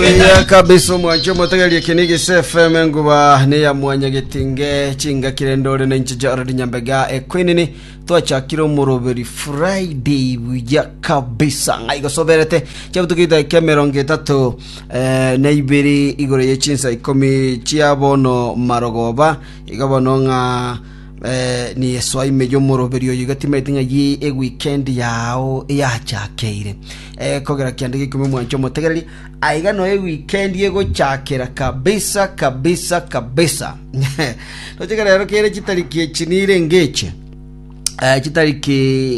Oya kabisa omwancho omotegeria eke ni gise FM enguba ne ya mwanya getinge chingakire ndore na inche Jared Nyambega ekwenini twachakire omoroberi Friday buya kabisa ng'ai gosoberete chiabutukita eke mirongo etatu eh, na ibere igoro ye chinsa ikomi chia bono marogoba iga bono ng'a eh, ni eswaime y'omoroberi oyo igatima eting'a ye eweekend yao yachakeire Ekogera kianda gikumi mwanche omotegereri, aiga noe wikendi egochakera kabisa kabisa kabisa. Tocheke rero kere chitariki echi nirenge eche eh, chitariki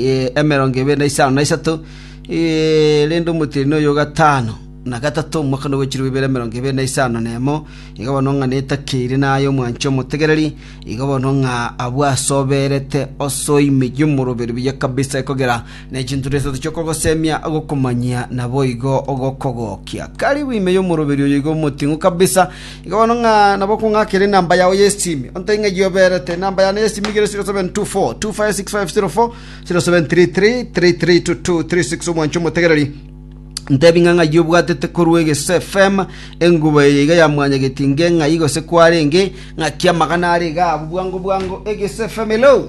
eh, emerongo ebere na isano na isato eh, rende omotiri noyo gatano na gatato omwaka nogwechirwa ibere emerongo ebere na isano na emo iga bono ng'a netakeire naye omwanche omotegereri iga bono ng'a abwasoberete osoimiyo moroberi buya kabisa ekogera Ne chinturo isato chi'okogosemia gokomanyia naboigo gokogokia. Karibu ime y'omoroberi oyo iga omoting'u kabisa, iga bono ng'a nabo okong'akera enamba yao y'esimi. Ontebie ng'a eyio oberete. Enamba yane y'esimi igere 0724 256504 0733 332236 omwancho omotegereri. Ntebi ng'a ng'ai obwatete korwa egese FM engubo eye iga ya mwanyageti nge ng'ai gose kwarenge ng'aki amagana are iga abu bwango bwango egese FM hello